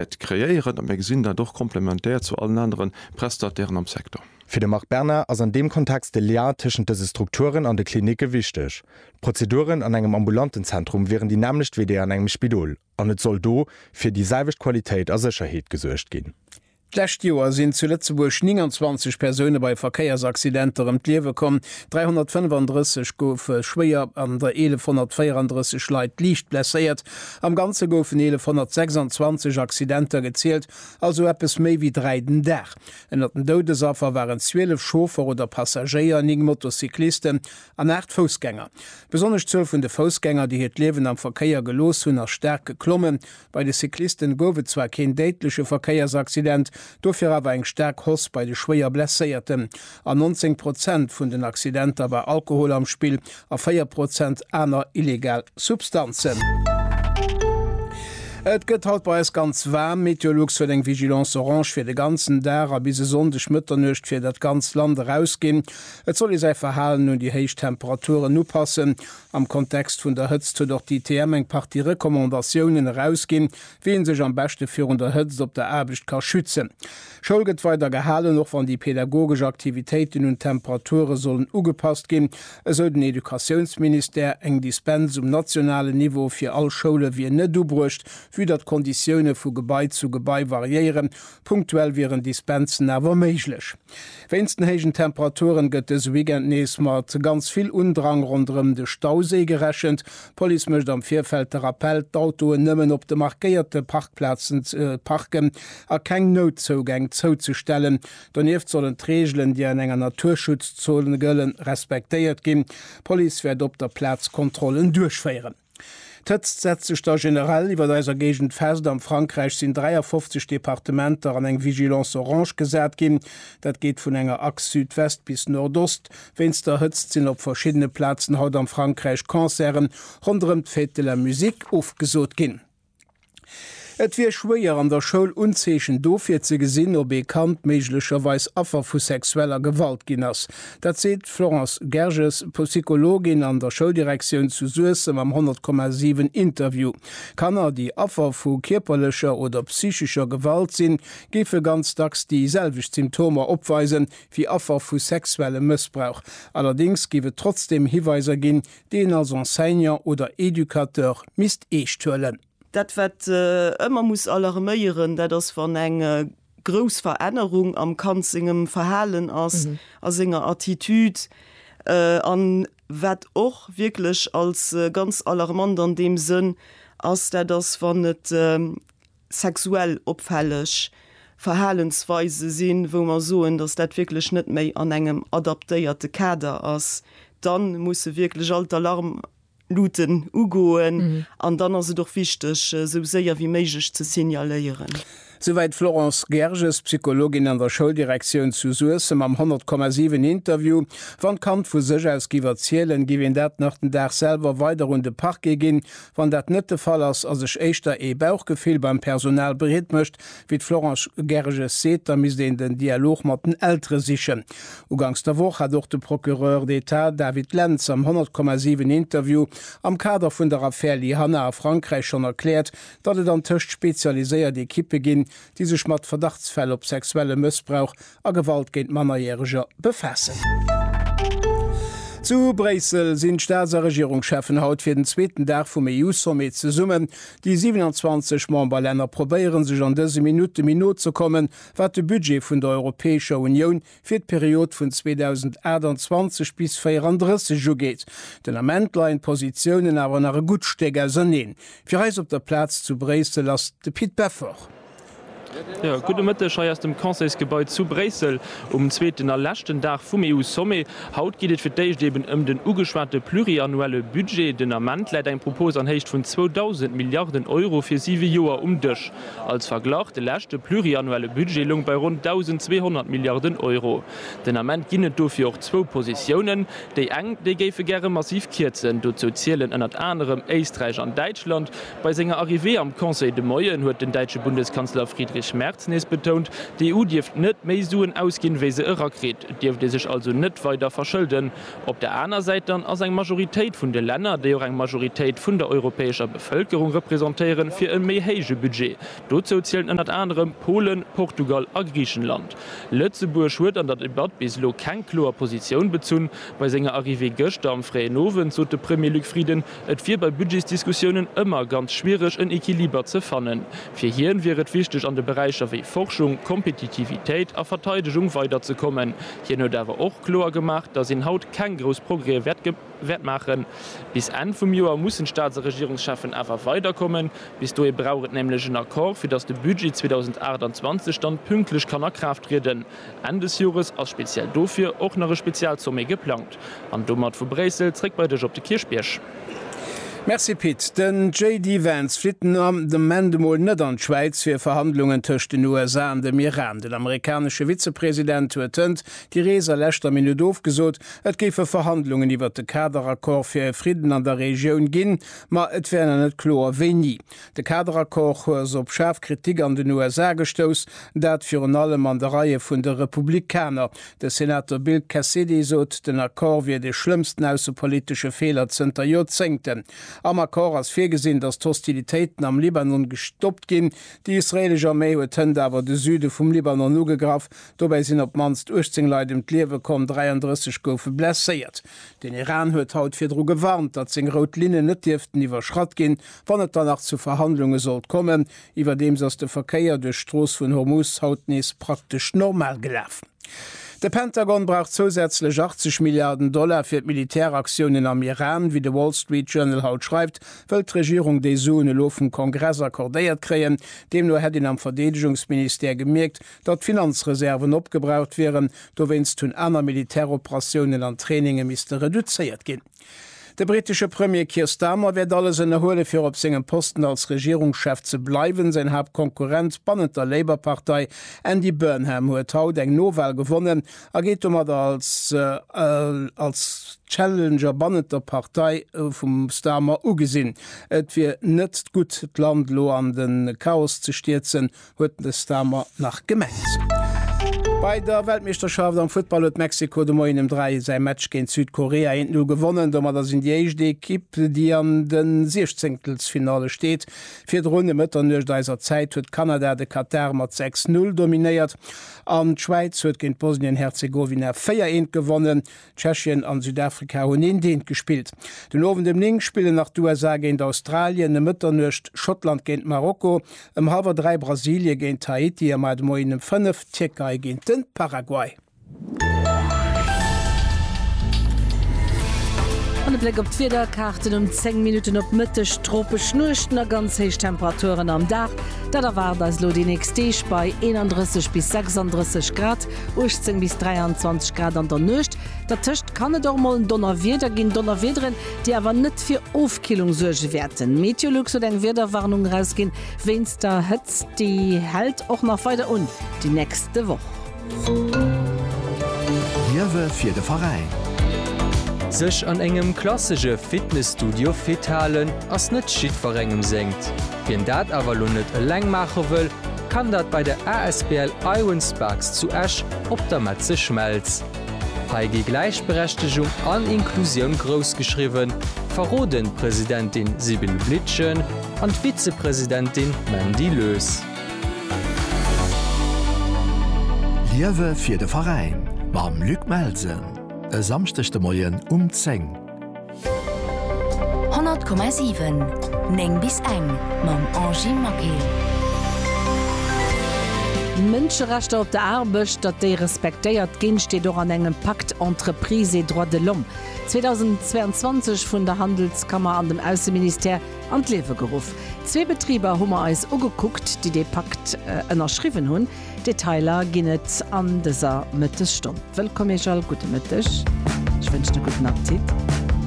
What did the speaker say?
Et kreéieren, a mir gesinn dat och komplementär zu allen anere Prestatairen am Secteur. Fir de Marc Berna ass an deem Kontext de Lien tëschent dëse Strukturen an de Klinicke wichteg. D'Prozeduren an engem ambulanten Zentrum wieren déi nämmlecht wéi déi an engem Spidol an et soll do fir déi selwecht Qualitéit a Sécherheet gesuergt ginn. D'lescht Joer sinn zu Lëtzebuerg 29 Persoune bei Verkéiersaccidenter ëm d'Liewe komm, 335 goufe schwéier an der 1134 Leit liicht blesséiert. Am Ganze goufen 1.126 Accidenter gezielt, also eppes méi wéi dräi den Dag. Ënnert den Doudesaffer waren 12 Chauffer oder Passagéier, néng Motocyclisten an aacht Foussgänger. Besonnesch d'Zuel vun de Foussgänger, déi hiert Liewen am Verkéier gelooss hunn, ass staark geklommen. Bei de Cyclisten gouf et zwar keen déidleche Verkéiersaccident, dofir awer eng staark Hoss bei de schwéier Blesséierten. An 19 Prozent vun den Accidenter war Alkohol am Spill a 4 Prozent aner illegal Substanzen. Et gëtt haut bei eis ganz waarm. Meteolux huet eng Vigilance orange fir de ganzen Dag a bis e Sonndeg Mëtternuecht fir dat ganzt Land erausginn. Et soll ee säi Verhalen un déi héich Temperaturen upassen. Am Kontext vun der Hëtzt huet och d'ITM eng Partie Recommandatiounen erausginn, wéi ee sech am beschte virun der Hëtzt op der Aarbecht ka schützen. Schoul gëtt weider gehalen, och wann déi pedagogesch Aktivitéiten un d'Temperature sollen ugepasst ginn, esou den Educatiounsministère. Eng Dispens um nationalen Niveau fir all Schoule wier net ubruecht, vue datt d'Konditioune vu Gebai zu Gebai variéieren. Punktuell wieren Dispensen awer méiglech. Wéinst den héijen Temperaturen gëtt dëse Weekend nees mat ganz vill Undrang ronderëm de Stauséi gerechent. D'Police mécht am Virfeld de Rappell, d'Autoen nëmmen op de markéierte Parkplazen ze parken. a keng Noutzougäng zouzestellen. Donieft sollen d'Reegelen, déi an enger Naturschutzzone gëllen, respektéiert ginn. D'Police wäert op der Plaz Kontrollen duerchféieren. D'Hëtzt setzt sech da generell iwwer eiser Géigend fest. Am Frankräich sinn 53 Departementer an eng Vigilance orange gesat ginn. Dat geet vun enger Achs Südwest bis Nordost. Wéinst der Hëtzt sinn op verschiddene Plazen haut am Frankräich Concerten ronderëm d'Fête de la musique ofgesot ginn. Et wier schwéier, an der Schoul Unzeechen dofir ze gesinn, ob ee Kand méiglecherweis Affer vu sexueller Gewalt ginn ass. Dat seet d'Florence Gerges, Psychologin an der Schouldirektioun zu Suessem am 100,7 Interview. Kanner, déi Affer vu kierperlecher oder psychescher Gewalt sinn, géife ganz dacks déi selwecht Symptomer opweisen, wéi Affer vu sexuellem Mëssbrauch. Allerdéngs géif et trotzdeem Hiweiser ginn, deen als Enseignant oder Educateur misst eescht huelen. Dat wat ëmmer muss alarméieren, dat ass wann eng grouss Verännerung am Kand sengem Verhalen ass, a senger Attitude, an wat och wierklech als ganz alarmant an deem Sënn ass, dat ass wann et sexuell opfälleg Verhalensweise sinn, wou mer soen, dass dat wierklech net méi an engem adaptéierte Kader ass, dann musse wierklech all d'Alarmluuten ugoen an dann ass et och wichteg, esou séier wéi méiglech ze signaléieren. Souwäit d'Florence Gerges, Psychologin an der Schouldirektioun zu Suessem am 100,7 Interview. Wann d'Kand vu sech aus giff erzielen, giff een dat nach den Dag selwer weider un de Parquet ginn, Wann dat net de Fall ass, a sech éischter ee Bauchgefill beim Personal breet mécht, wéi d'Florence Gerges seet, da misst een den Dialog mat den Eltere sichen. Uganks der Woch hat och de Procureur d'Etat David Lentz am 100,7 Interview am Kader vun der Affär Lyhanna a Frankräich schonn erkläert, datt et antëscht spezialiséiert Ekippe ginn, déi sech mat Verdachtsfäll op sexuelle Mëssbrauch a Gewalt géint Mannerjäreger befaassen. Zu Bréissel sinn d'Staats a Regierungscheffen haut fir den zweeten Dag vum EU-Sommet zesummen. Déi 27 Memberlänner probéiere sech an dëse Minutte méi no ze kommen, wat de Budget vun der Europäescher Unioun fir d'Period vun 2028 bis 34 ugeet. Den Ament leien d'Positiounen awer nach e gutt Stéck auserneen. Fir eis op der Plaz zu Bréissel ass de Pit Beffort. Jo, gudde Mëtteg hei aus dem Conseilsgebai zu Bréissel um zweeten a leschten Dag vum EU-Sommet. Haut geet et fir d'éischt eben ëm den ugeschwate pluriannuelle Budget. Den Ament läit eng Propos an Héicht vun 2.000 Milliarden Euro fir siwe Joer um Dësch. Als Verglach, de leschte pluriannuelle Budget loung bei ronn 1.200 Milliarden Euro. Den Ament ginn et dofir och zwou Positiounen. Déi eng, déi géife gäre massiv kierzen. Dozou zielen ënnert anerem Éisträich an Däitschland. Bei senger Arrivée am Conseil de Moien huet den däitsche Bundeskanzler Friedrich Merz nees betount, d'EU dierft net méi Suen ausginn, wéi se erakritt. Et dierft ee sech also net weider verschëlden. Op der aner Säit dann ass eng Majoritéit vun de Länner, déi och eng Majoritéit vun der europäescher Bevëlkerung representéieren, fir e méi héije Budget. Dozou zielen ënnert anerem Polen, Portugal a Griichenland. Lëtzebuerg huet an der Debatt bis elo keng kloer Positioun bezunn. Bei senger Arrivée gëschter am fréien Owend sot de Premier Luc Frieden, Et wier bei Budgetsdiskussiounen ëmmer ganz schwiereg en Equiliber ze fannen. Fir hien wier et wichteg an de Beräicher wéi Forschung, Kompetitivitéit a Verteidegung weider ze kommen. Hien huet awer och kloer gemaach, datt een haut keng grouss Progrèe wäert maachen. Bis Enn vum Joer mussen d'Staats a Regierungscheffen awer weider kommen. Bis dohi brauch et nämlech en Accord fir datt de Budget 2028 dann pünktlech kann a Kraaft trieden. Enn des Jores ass speziell dofir och nach e Spezialsommet geplangt. An domat vu Bréissel zréck bei dech op de Kierchbierg. Merci Pit. Den JD Vance flitt den Ament emol net an d'Schwäiz fir Verhandlungen tëscht den USA an dem Iran. Den amerikanesche Vizepresident huet hënt déi Rees a leschter Minutt ofgesot. Et géife Verhandlungen iwwert de Kader-Accord fir e Fridden an der Regioun ginn, ma et wär nach net kloer wéini. De Kaderaccord hues op schaarf Kritik an den USA gestouss, dat virun allem an de Reie vun de Republikaner. De Senator Bill Cassidy sot, den Accord wier de schlëmmsten aussepolitesche Feeler zënter Joerzéngten. Am Accord ass virgesinn, datt d'Hostilitéiten am Libanon gestoppt ginn. Déi israeelesch Arméi huet hënt awer de Süde vum Libanon ugegraff. Dobäi sinn op d'mannst 18 Leit ëm d'Liewe komm, 33 goufe blesséiert. Den Iran huet haut virdru gewarnt, datt seng rout Linnen net dierften iwwerschratt ginn, Wann et dann nach zu Verhandlunge sollt kommen, iwwerdeems ass de Verkéier duerch d'Strooss vun Hormuz haut nees praktesch normal gelaf. De Pentagon brauch zousätzlech 80 Milliarden Dollar fir d'Militäraktiounen am Iran. Wéi de Wall Street Journal haut schreift, wëll d'Regierung déi Suen elo vum Kongress accordéiert kréien. Deemno hätt een am Verdeedegungsministère gemierkt, datt d'Finanzreserven opgebraucht wieren. Dowéinst hunn aner Militäroperatiounen an Traininge misste reduzéiert ginn. De brittesche Premier Keir Starmer wäert alles ënnerhuele fir op sengem Posten als Regierungschef ze bleiwen. Säin Haaptkonkurrent bannent der Labour-Partei Andy Burnham huet haut eng Nowal gewonnen a geet domat als als Challenger bannent der Partei vum Starmer ugesinn. Et wier net gutt d'Land elo an de Chaos ze stierzen, huet den Stamer nach gemengt. Bei der Weltmeeschterschaft am Futtball huet Mexiko de Moien ëm 3 säi Match géint Südkorea 1, 0 gewonnen. Domadder sinn déi éischt Ekipp, déi an de Siechzéngtelsfinalle steet. Virdrun, ëm Mëtternuecht eiser Zäit, huet Kanada de Katar mat 6, 0 dominéiert an d'Schwäiz huet géint Bosnien-Herzegowina 4, 1 gewonnen. Tschechien an Südafrika hunn eent-eent gespillt. Den Owend ëm 9 spillen nach d'USA géint Australien, ëm Mëtternuecht Schottland géint Marokko, ëm halwer 3 Brasilie géint Haiti a mat Moien ëm 5 d'Tierkei géint de Paraguay. An e Bléck op d'Wiederkaarten um 10 Minutten op Mëtteg, tropesch Nuechten a ganz héich Temperaturen am Dag, dat erwaart eis elo déi nächst Deeg bei 31 bis 36 Grad. 18 bis 23 Grad an der Nuecht, dertëscht kann et och mol Donnerwieder ginn, Donnerwiederen, déi awer net fir Ofkillung suerge wäerten. Meteolux huet eng Wiederwarnung erausginn wéinst der Hëtzt, déi hält och nach weider un déi nächste Woch. Liewe fir de Veräin. Sech an engem klassege Fitnesstudio fit halen ass net jiddwerengem sengt. Wien dat awer elo net eleng maache wëll, kann dat bei der asbl Iron Sparks zu Esch op der Metze Schmelz. Hei gi Gläichberechtegung an Inklusioun grouss geschriwwen, verroden d'Presidentin Sibylle Blietgen an d'Vizepresidentin Mandy Loes. Liewe fir de Veräin mam Luc Melsen e Samschdeg de Moien um 10. 100,7 9 bis eng mam Angie Maquet. Mënscherechter op der Aarbecht, datt déi respektéiert ginn, steet och an engem Pacte entreprises et droits de l'homme 2022 vun der Handelskammer an dem Ausseministère an d'Liewe geruff. Zwee Betriber hu mer eis ugekuckt, déi dee Pakt ënnerschriwwen hunn. Detailer ginn et an dëser Mëttesstonn. Wëllkomm Iech all, gudde Mëtteg, ech wënschen e gudden Appetit.